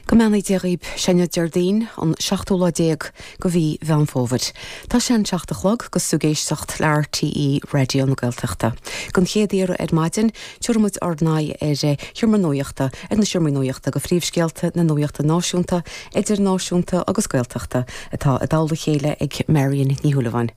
Go mbeannaí Dia dhaoib, sé inniu Déardaoin, an seachtú lá déag go mhí Mheán Fómhair. Tá sé an seacht a chlog agus tú ag éisteacht le RTÉ Raidió na Gaeltachta. Don chéad iarraidh ar maidin, tiúrfaidh muid ár n-aghaidh ar an Seomra Nuachta, ar na Seomraí Nuachta go phríomhscéalta na nuachta náisiúnta, idirnáisiúnta agus Gaeltachta atá i dtoll a chéile ag Marion Ní Shúilleabháin.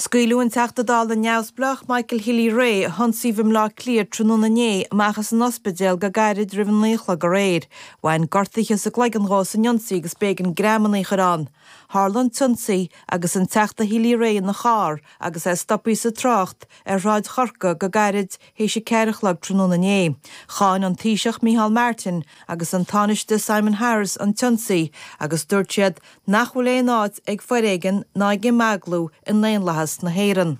Scaoileadh an Teachta Dála Neamhspleách Michael Healy-Rae, a hionsaíodh i mBleá Cliath tráthnóna inné, amach as an ospidéal go gairid roimh a naoi a chlog aréir. Bhain gortuithe sa gcloigeann dhó san ionsaí agus b'éigean greamanna a chur ann. Tharla an t-ionsaí agus an Teachta Healy-Rae ina charr agus é stoptha sa trácht ar Shráid Chorca go gairid théis a ceathair a chlog tráthnóna inné. Cháin an Taoiseach Micheál Martin agus an Tánaiste Simon Harris an t-ionsaí agus dúirt siad nach bhfuil aon áit ag foréigean ná ag imeaglú i ndaonlathas na hÉireann.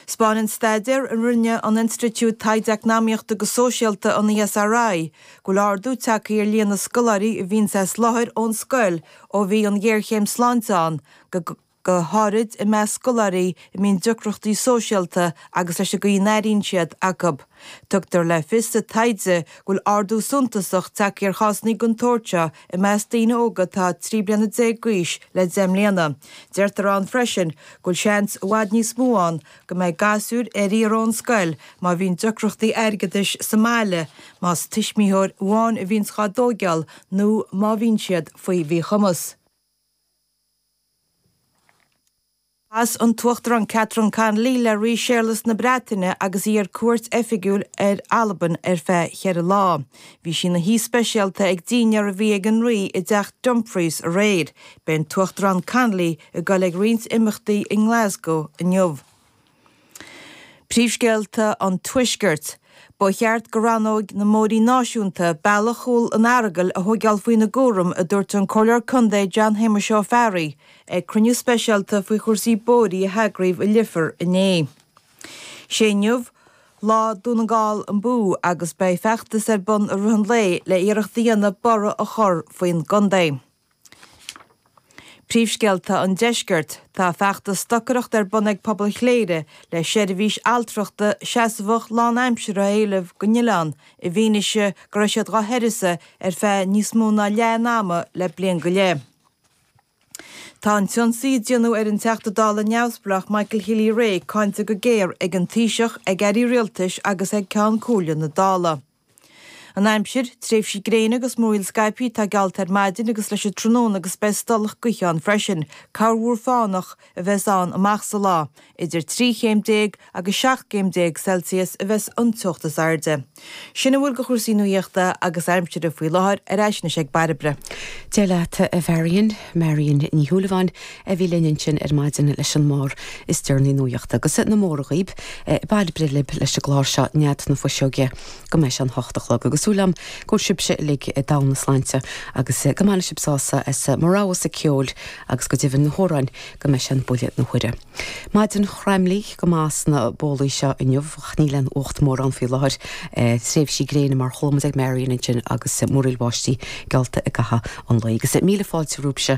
'Spáineann staidéar a rinne an Institiúid Taighde Eacnamaíochta agus Sóisialta, an ESRI, go bhfuil ardú tagtha ar líon na scoláirí a bhíonns as láthair ón scoil ó bhí an ghéarchéim sláinte ann go go háirid i measc scoláirí a mbíonn deacrachtaí sóisialta agus leis an gcaoi a n-airíonn siad, acu. Tugtar le fios sa taighde go bhfuil ardú suntasach tagtha ar chásanna den tsórt seo i measc daoine óga atá 13 bliana d'aois le deich mbliana. Deirtear ann freisin go bhfuil seans i bhfad níos mó ann go mbeidh gasúir ar iarraidh ón scoil má bhíonn deacrachtaí airgeadais sa mbaile, más tuismitheoir amháin a bhíonns dhá dtóigeál nó má bhíonn siad faoi mhíchumas. Chas an tUachtarán Catherine Connolly le Rí Séarlas na Breataine agus í ar cuairt oifigiúil ar Albain ar feadh cheithre lá. Bhí sí ina haoi speisialta ag dinnéar a bhí ag an Rí i dTeach Dumfries aréir. Beidh an tUachtarán Connolly ag goil ag roinnt imeachtaí i nGlasgow inniu. Príomhscéalta an Tuaiscirt. Ba cheart go rannóg na mBóithrí Náisiúnta bealach chúl an Earagail a thóigeáil faoina gcúram, a dúirt an Comhairleoir Contae John Shéamuis Ó Fearraigh ag cruinniú speisialta faoi chúrsaí bóithrí a heagraíodh i Leifear inné. Sé inniu lá Dún na nGall Abú agus beidh feachtas ar bun i rith an lae le iarracht a dhéanamh borradh a chur faoin gcontae. Príomhscéalta an Deiscirt, Tá feachtas stocaireachta ar bun ag Pobal Chléire le seirbhís altrachta seasmhach lánaimseartha a éileamh don oileán i bhfianaise go raibh siad dhá huireasa ar feadh níos mó ná leath an ama le bliain go leith. Tá an t-ionsaí a déanadh ar an Teachta Dála Neamhspleách Michael Healy-Rae cáinte go géar ag an Taoiseach, ag Airí Rialtais agus ag Ceann Comhairle na Dála. An aimsir, Tréimhsí gréine agus múraíl scaipthe atá geallta ar maidin agus leis an tráthnóna agus beidh stolladh gaoithe ann freisin. Corrmhúr fánach a bheas ann amach sa lá. Idir trí chéim déag agus seacht gcéim déag Celsius a bheas an teocht is airde. Sin a bhfuil de chúrsaí nuaíochta agus aimsire faoi láthair, ar ais anois ag Bairbre. Dé leat, a Mharion. Marion Ní Shúilleabháin a bhí linn ansin ar maidin leis an mír is deireanaí nuaíochta, agus na móra dhaoib Bairbre lib leis an gclár seo Nead na Fuiseoige go mbeidh sé an hocht a chlog, agus súil agam go bhfuil sibse uilig i dtogha na sláinte agus go mbainfidh sib sásamh as mo roghasa ceoil agus go deimhin na hamhráin go mbeidh sé an buille na huaire. Maidin chraimlíth go maith sna bólaí seo inniu, ach níl aon fhuacht mórán faoi láthair, tréimhsí gréine mar chuala muid ag Marion ansin agus múraíl bháistí geallta i gcaitheamh an lae. Agus míle fáilte romhaibse.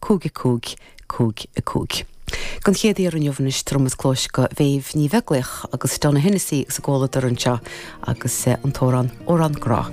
5 5 5 5 Don chéad iarraidh inniu anois tabharfaidh muid cluas do Mhéabh Ní Bheaglaoich agus Donogh Hennessy agus a gcomhluadar anseo agus an t-amhrán Amhrán Grá.